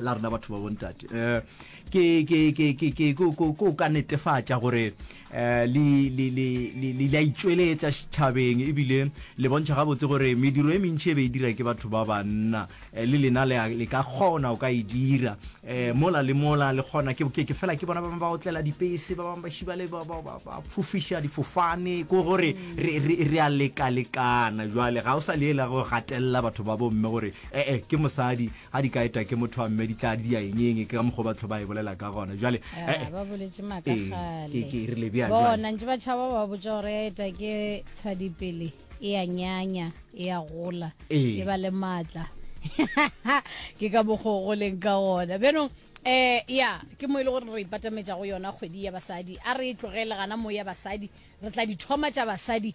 la rena batho ba bontate um ke ko ka netefatša gore um le a itšweletsa setšhabeng ebile le bontšha gabotse gore mediro e mentši e be e dira ke batho ba banna eh, le lena le ka kgona o ka e dira um mola le mola le kgona ke fela ke bona ba bangwe ba otlela dipese ba bangwe ba šibale ba fofiša difofane ko gore re a lekalekana jale ga o sa leela go gatelela batho ba bomme gore ee eh, ke mosadi Ga di ka eta ke motho wa mme di tla di ya enyeng ke ka mokgwa batho ba e bolela ka gona jale eh, eh, ba boletse maaka eh, gale ke rile bja bona ntse ba tšhaba ba botsa gore ya eta ke tshadipele e ya nyanya e ya gola e ba le maatla ke ka mokgwa go leng ka gona bjanong um ya ke mo e le gore re ipatametsa go yona kgwedi ya basadi a re e tlogele gana mo ya basadi re tla dithoma tša basadi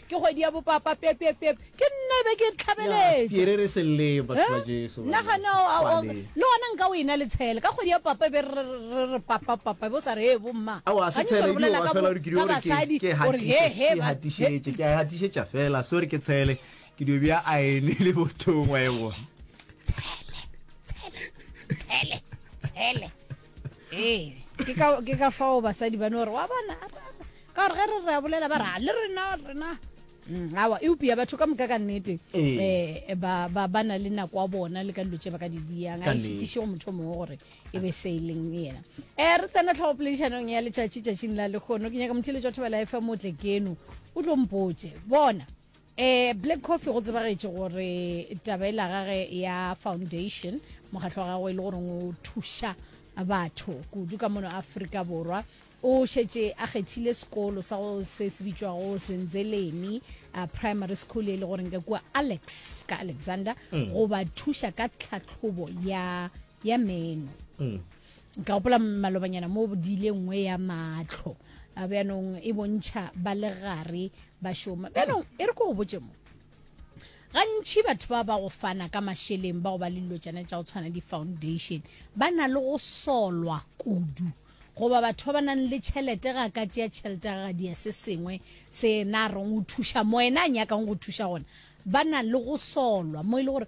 Ke kgwedi ya bopapa pep pep pep ke nna e be ke tlhabeletša. Piere re se le batho ba Jesu. Na ga no le gona nka o ena le tshele ka kgwedi ya papa e be re re papa papa e bo sa re e bo mma. Awa se tshele ke wa fela gore ke dio re ke ke hatišetše ke hatišetše ke hatišetša fela sorry ke tshele ke dio bja a ene le bothongwa e bona. Tshele tshele tshele tshele. ee ke ka fao basadi ba no gore wa bona ka gore ge re re a bolela ba ra le rena rena mm, awa eupia batho ka moka ka nnete um ba na le nako ya bona le ka dilo tse ba ka di diyang a šitiše go motho mongwe gore e be se e leng yena um re tsena tlhogopoledišanong ya letšatši tšatšing la lekgono ke nyaka motheletso wa thobela fm o tle keno o tlo mpotse bona Eh, Black Coffee go tsebagetše gore tabela gage ya foundation mokgatlho wa gagwe e le gore o thuša batho kudu ka mono Afrika Borwa o šetše a kgethile sekolo sa go se se bitšwago Senzeleni uh, Primary School e le goreng ka kua Alex ka Alexander mm. go ba thuša ka tlhatlhobo ya ya meno mm. Ka gopola malobanyana mo di ile nngwe ya matlho a bjanong e bontšha ba le gare ba šoma bjanong e re ko go botse mo gantši batho ba ba go fana ka mašeleng ba go ba le dilo tšana tša go tshwana di-foundation ba na le go solwa kudu goba batho ba ba nang le tšhelete ga ka tšea tšhelete ga gadia se sengwe se na reng o thuša mo ena a nyakang go thuša gona ba na le go solwa mo e le gore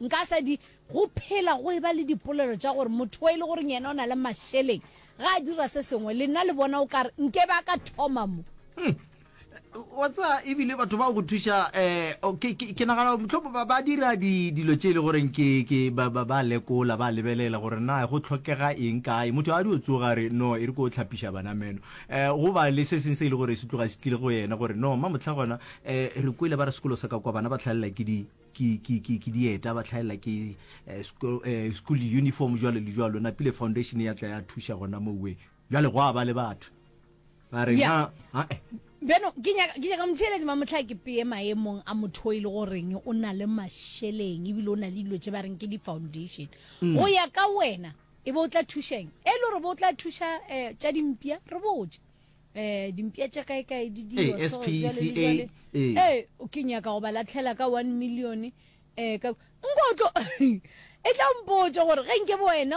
Nka se di. Go phela go eba le dipolelo tša gore motho wo e le goreng yena o na le mašeleng ga a dira se sengwe, lenna le bona o ka re nke be a ka thoma mo. Wa tsa ebile batho ba go thuša um ke ke ke nagana motlhopo ba ba dira di dilo tše e le goreng ke ke ba ba ba lekola ba lebelela gore na go tlhokega eng kae motho a di o tsoga re no e re ko tlhapiša bana meno um go ba le se seng se e le gore se tloga se tlile go yena gore no mma motlha gona um re kwele ba re sekolo sa ka kwa bana ba tlhalela ke di ke, ke, ke, ke dieta ba tlhaela ke eh, school, eh, school uniform jwalo le jwalo napile foundation ya tla ya thuša gona moweng jwale go a ba le batho ba re Ya. na a eh, beno ke nyaka ke nyaka motheeletse mamotlha ke peye maemong a motho o e le goreng o na le mašeleng ebile o na le dilo tse ba reng ke di-foundation go ya ka wena e be o tla thušeng e le gore bo o tla thuša um tša dimpša re botse eh dimpša tša kae kae di dio eh, so jwale le jwale eh. eh o ke nyaka go ba latlhela ka 1 million eh ka nko tlo e tla mpotša gore ge nke bo wena